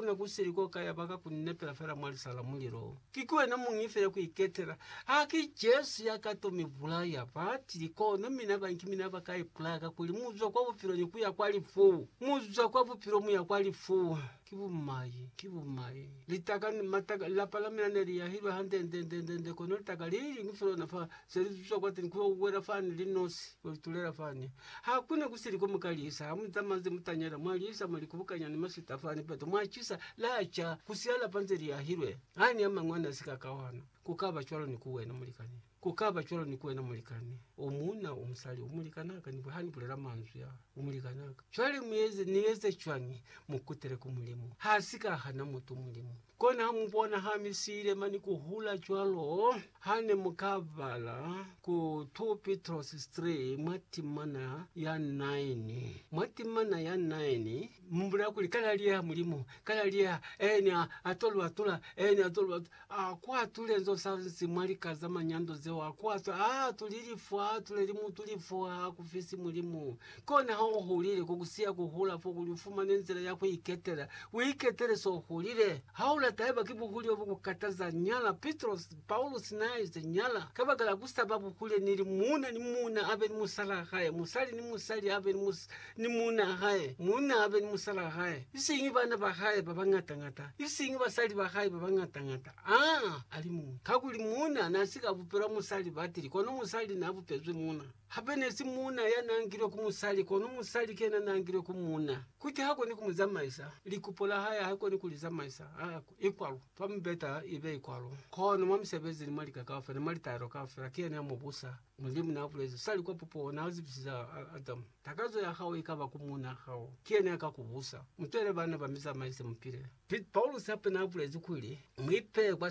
Ku ne ku sili ko ka yaba ka ku nepela fela mwa lisa la mulilo. Ki ki wena muñi fela ku iketela. Ha ki Jesu ya ka to mi bulaya. Ba tili, Kono mina ba, ki mina ba ka ipulaya, kakuli mu zwa kwa bupilo ni ku ya kwa lifu. Mu zwa kwa bupilo mu ya kwa lifu. Ki bumai, ki bumai. Litaka, mataka, lapa la mina ne li yahilwe hande nde, nde, nde, nde, kono litaka li liñwi fela ona fa, se li zwa kwateni ku yo wela fani, linosi, ku yo itulela fani. Ha ku ne ku si liko mu ka lisa, ha mu zamazi mutanyela, mwa lisa, mwa li kubukanya ni maswita fa ni peto, mwa cisa, la ca, ku si alapa nze li ahilwe. Ha ni a mañwi a ne a si ka kawana. Ku ka ba cwalo ni ku wena, mulikani. Ku ka ba cwalo ni ku wena, mulikani. O muuna, o musali, o mulikani a ka ni, ha ni bulela manzwi a, o mulikani a ka. Cwale mu eze, ni eze cwañi? Mu kutele ku Mulimu. Ha si ka hana mutu, Mulimu. Kona ha mu bona ha mi siile mani ku hula cwalo, ha ne mu ka bala ku 2 Pitrosi 3 mwa timana ya 9. Mwa timana ya 9, mu bulela kuli, Ka laliyeha Mulimu, ka laliyeha, ene a, a to lu atula, ene a to lu atula. A ku atule nzo sa nsi mwa lika za manyando zeo, a ku atule, a atuli lifu, a atuleli mutu lifu, ha ku fisi Mulimu. Kona ha u hulile, ko ku siya ku hula fo kuli u fumane nzila ya ku iketela. U iketele s'o hulile. Ha u lata haiba ki buhule bo ku kataza, nyala. Pitrosi, Paulusi n'a ize, Nyala. Kabakala ku sa ba buhule ni li, muuna ni muuna a be ni musalaa hae, musali ni musali a be ni, ni muunaa hae, muuna a be ni musalaa hae, isiñi bana ba hae ba bañata-ñata, isiñi basali ba hae ba bañata-ñata, aa, a li muñwi. Kakuli muuna n'a si ka bupelwa musali batili, kono musali n'a bupezwi muuna. Hape nesi muuna ya nangilwe ku musali, kono musali ki yena nangilwe ku muuna. Kuti ha koni ku mu zamaisa, likupo la hae ha koni ku li zamaisa. Ha i kwalo. Fa mubeta ibe i kwalo. Kono mwa misebezi ni mwa lika kaufela ni mwa litaelo kaufela, ki yena ya mu busa. Mulimu na bulezi sali kwa pupuho, na zibisize Adamu, Takazo ya hao ikaba ku muuna hao, ki yena ya ka ku busa. Mu twele bana ba mi zamaise, mu pile. Piet Paulus hape naabulezi kuli, Muipeye kwa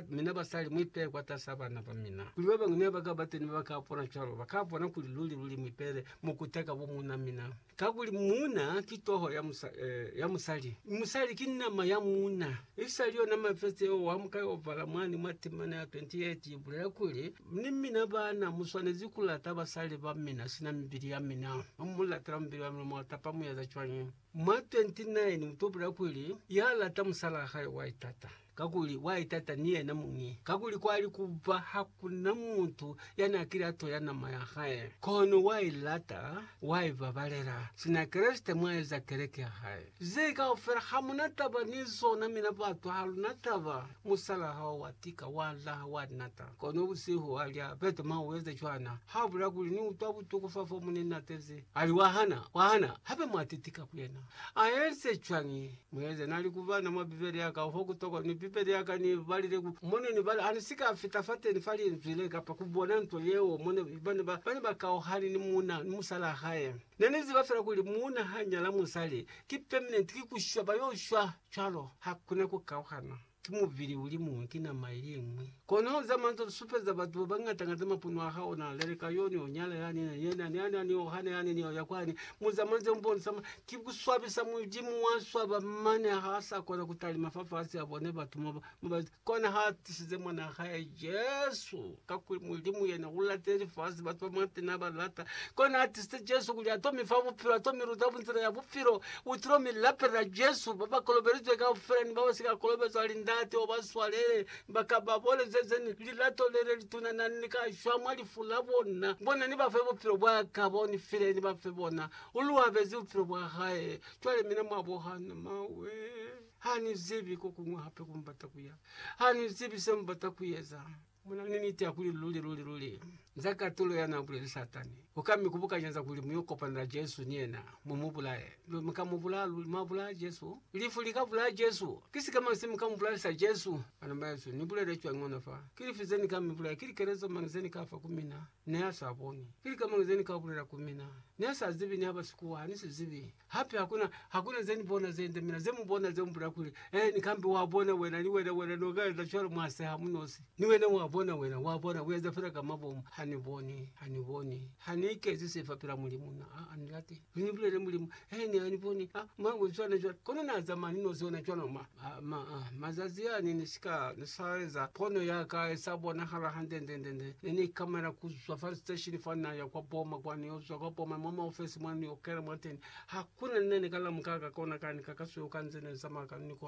mina basali, muipeye kwatas'a bana bamina, kuli babañwi nebakaba teni babakabona cwalo, bakabona kuli luli-luli muipele mukuta ka bomuuna mina. Kakuli muuna ki toho ya musali, mi musali ki nama ya muuna. Isali yona mafesi yeo Wamuka yobala mwani mwa temana ya 28 ibulela kuli, Ni mina baana, muswanezi kulata basali bamina sina mibili yamina. Hamulatela mubili wamina, mwatapa mueza cwañi? Mwa 29 utopela kuli, Ya lata musalaa hae wa itata, kakuli wa itata ni yena muñi, kakuli kwali kuba ha ku na mutu ya n'a kile a toya nama ya hae, kono wa i lata, wa i babalela, sina Kreste mwa eza keleke ya hae. Ze kaufela ha mu na taba ni zona, mina batu ha lu na taba. Musalaa hao wa tika, wa laha, wa nata, kono busihu a lya, Peter, ma u eza cwana? Ha bulela kuli, Ni utwa butuku fa fo mu ne natezi, Ali, Wa hana, wa hana, hape mwa titika ku yena. A eze cwañi? Mu eze, Na li ku bana mwa Bibele ya ka, ho ku tokwa, ni Bibele ya ka ni balile ku, mo ne ni bala, a ni si ka fita fateni fa Linzwi le, kapa ku bona nto yeo, mo ne, ba ne ba, ba ne ba kauhani ni muuna, ni musalaa hae. Ne ni ziba fela kuli muuna ha nyala musali, ki permanent, ki ku shwa, ba yo shwa cwalo. Hakuna ku kauhana. Ki mubili uli muñwi, ki nama ili iñwi. Kono za manzwa li supeza batu ba bañata-ñata mapunwa a hao, na leleka yo, ni yo nyala yani, ni yena, ni yani, ni yo hana yani, ni yo ya kwani. Mu za manzwa mbonisa ma, ki ku swabisa Mulimu wa swaba, mane ha sa kona ku talima fa fasi, a bone batu mo ba, mo ba, kona ha tisize Mwana hae Jesu. Kakuli Mulimu yena ulate lifasi, batu ba mwate na ba lata. Kona atisite Jesu kuli ato mifa bupilo, ato miluta bunzila ya bupilo. Utilo mi lapelela Jesu, ba ba kolobelizwe kaufela ni ba ba si ka kolobezwa ali Ndate uba swalele, ba ka ba boneze zeni lilato lele lituna nani li ka shwa mwa lifu la bona. Bona ni bafe bupilo bwa ka bo ni file ni bafe bona. U lu abezi bupilo bwa hae. Cwale mina mwa bo hana mawe. Hani zibi kokuñwi hape ku mubata kuya. Hani zibi se mubata kueza. Muna ni niti ya kuli luli, luli, luli, nza katulo ya na buleli Satani. U ka mi kubukanya za kuli mu yo kopana na Jesu ni yena, mu mu bulaye. Luli, mu ka mu bulaya, luli, mwa bulaya Jesu. Lifu li ka bulaya Jesu. Ki sikema se mu ka mu bulalisa Jesu. Bana bahesu, ni bulele cwañi ona fa? Ki lifi ze ni ka mi bulaya? Ki likelezo mañi ze ni ka fa ku mina? Ne a sa boni. Ki lika mañi ze ni ka bulela ku mina? Ne sa zibi, ni haba sikuwa, ha ni si zibi. Hape hakuna, hakuna ze ni bona ze nde mina, ze mu bona, ze mu bulela kuli, He, ni kambe wa bona wena, ni wena, wena no ka eza cwalo, mwa seha mu nosi. Ni wena wa bona wena, wa bona, u eza fela ka mabomu. Ha ni boni, ha ni boni. Ha ni ikezi se fa pela Mulimu, na, a, a ni lati. Mi ni bulelele Mulimu, he ne a ni boni, ha mwa bo cwana cwana. Kono na zamaya ni nozi ona cwana mwa mazazi a ne ni si ka sa eza pono ya ka e sa bonahala hande nde nde nde. Ne ni ikamela ku zwa fa station fa na ya kwa boma kwa ni yo zwa kwa boma mwa maofesi mwa ni yo kena mwa teni. Ha ku na ni ne ni ka lamuka ka kona ka ni ka ka suyo ka nze ne ni zamaya ka ni kona.